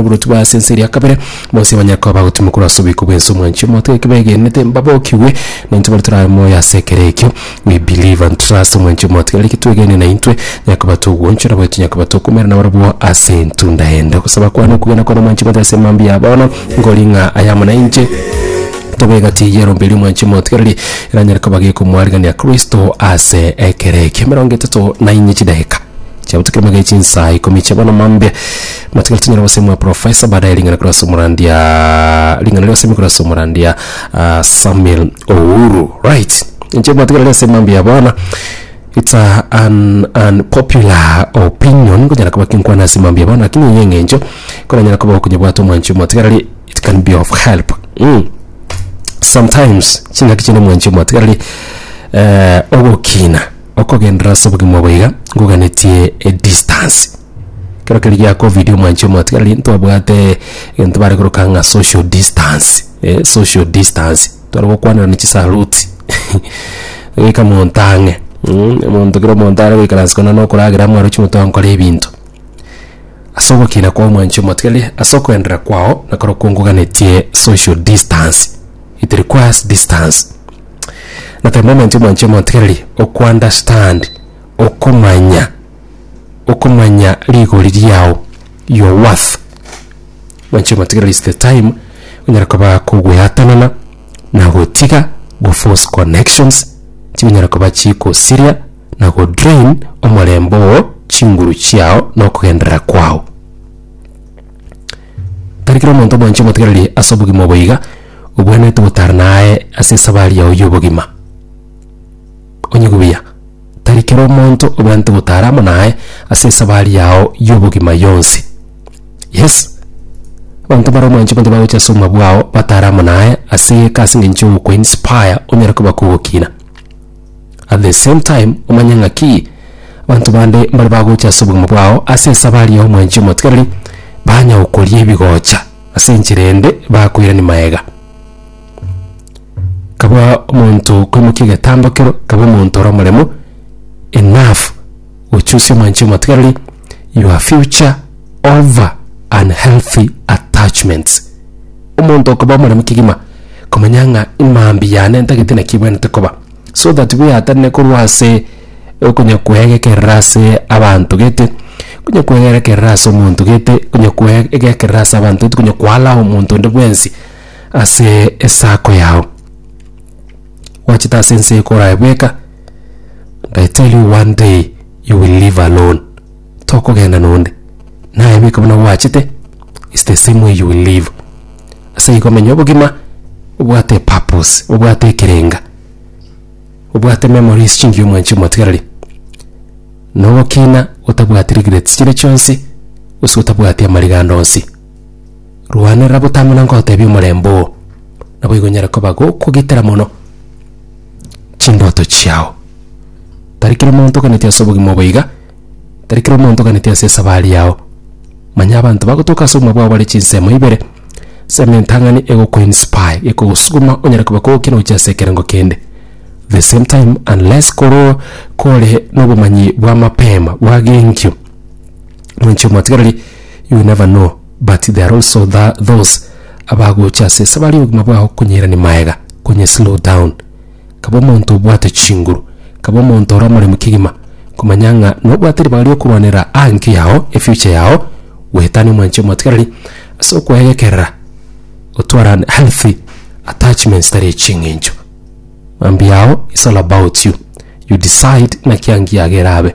Oboroti bwa ase ense eria ya kabere, bonsi abanyakoa bagotimwa korwa ase oboiko bw'ense omwanchwa omote, eke begenete mbabokigwe, na intwe baria torabe moyo ase ekero ekio. We believe and trust omwanchwa omote, kera getwegene na intwe, onye koba togwanchwa, nabo tonye koba tokoumera na barabwo ase entunda ende. Ogosaba kwane okogena kwane omwanchwa omote ase emambia ya bono, nkori ng'a ayamo na inche, tobe egati eyio yarombeire omwanchwa omote kereri eranyare koba gekomoarigania Kristo ase ekero ekio. Emerongo etato na inye chidageka. Chiabo tikirimo gai chinsa ikomi chiabo namambia matigari tinyara gosemwa profesa baadaye ring'ana korwa ase omorandia ring'ana rigosemia korwa ase omorandia ah, Samuel Ouru right inche matigari ase mambia bono it's a, an unpopular opinion nkonyara koba kinkwana ase mambia bono lakini eye eng'encho koranyara koba okonyebwate omwanchi omotigareri it can be of help mm. sometimes ching'aki chinde omwanchi omotigareri eh, ogokina okogenderera ase obogima obo iga, ngoganetie edistance. Kero keria gia covid omwanchi omotigareri ntwabwate egento bare koroka ng'a social distance, eh, social distance. Tware gokwanana chisaluti goika monto ang'e, mm, omonto kera omonto are goikaransa kona na okoragera amo aroche moto ankore ebinto. Ase ogokina kwao omwanchi omotigareri, ase okoenderera kwao, nakorokwo ngoganetie social distance. It requires distance. Na the moment omwanchia omotigereri okuunderstand okomanya okomanya rigori riao your worth mwanchia omotigereri is the time onyare koba kogweatanana na gotiga go force connections chinyare koba chigosiria na go drain omorembe oo chinguru chiao na okogenderera kwao. Tari kera omonto omwanchia omotigereri ase obogima obo iga obwenerete gotara naye ase esabari yao y'obogima. Onyigwe buya, tari kera omonto obwenerete gotara amo naye ase esabari yao y'obogima yonsi. Yes, abanto mbare omwanchia omonto bagocha ase obogima bwao batare amo naye ase egeka ase eng'encho y'ogokoinspire onyare koba kogokina. At the same time omanye ng'a ki abanto bande mbare bagocha ase obogima bwao ase esaba aria y'omwanchi omotigareri, banya gokoria ebigocha ase enchera ende bakoirania maega. Kabua omonto okoimokia egetambo kero, kabua omonto ore omoremo, enough, gochusia omwanchi omotigareri. your future over unhealthy attachments. Omonto okoba omoremu kegima komanya ng'a mambia yane ntagete naki ebwenete koba so that bweatanne korwa ase okonya kwegekerera ase abanto gete konya kwegerekerera ase omonto gete konya kwegekerera ase abanto gete konya kwa allow omonto onde bwensi ase esako yao. Gwachete ase ense eye koraye bweka. And I tell you one day you will live alone. Tokogenda nonde. Naye biko buna gwachete. It's the same way you will live. Ase igo menya obogima obwate purpose, obwate ekerenga. Obwate memories chingiya omwanchi omotigareri. Nogokina otabwati regrets chire chionsi, gose otabwati amarigando onsi. Rwanera botama na ngotebie omorembe oo, naboigo nyare koba gokogitera mono chindoto chiao. Tari kera omonto oganeti ase obogima obo iga, tari kera omonto oganeti ase esabari yao. Manya abanto bagotoka ase obogima bwao bare chinsemo ibere, nsemo entang'ani egoku inspire, ekogosuguma onyare koba kogokina gochia ase ekerengo kende. The same time unless koroo kore na obomanyi bwa mapema bwa genkio, Mwanche omwatigareri, you never know but there are also tha, those abagocha ase esabari y'obogima bwao konyeirania maega konye slow down kaba omonto obwate chinguru kaba omonto ore omoremu kegima komanya ng'a nobwate ribaga riokorwanera anki yao efuture yao goetania omwanche omwatigareri ase okoegekerera otware an healthy attachment tari eching'encho mambia yao is all about you you decide naki angi yago erabe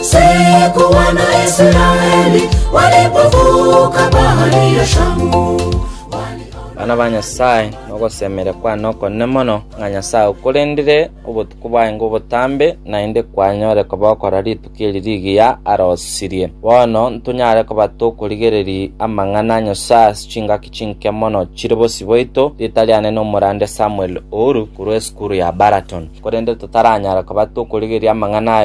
Siku Wanaisraeli walipovuka bahari ya Shamu, Bana ba Nyasae, nogosemeria kwane okonene mono, ng'a Nyasae okorendire obotuko bwaye ngobotambe, naende kwanyore kobokora rituko eri rigiya arosirie. Bono ntonyare koba tokorigereria amang'ana a Nyasae ase chingaki Chinke mono chire bosio bwaito ritari ane nomorande Samuel Ouru korwa esukuru ya Baraton, korende totaranyara koba tokorigeria amang'ana aye.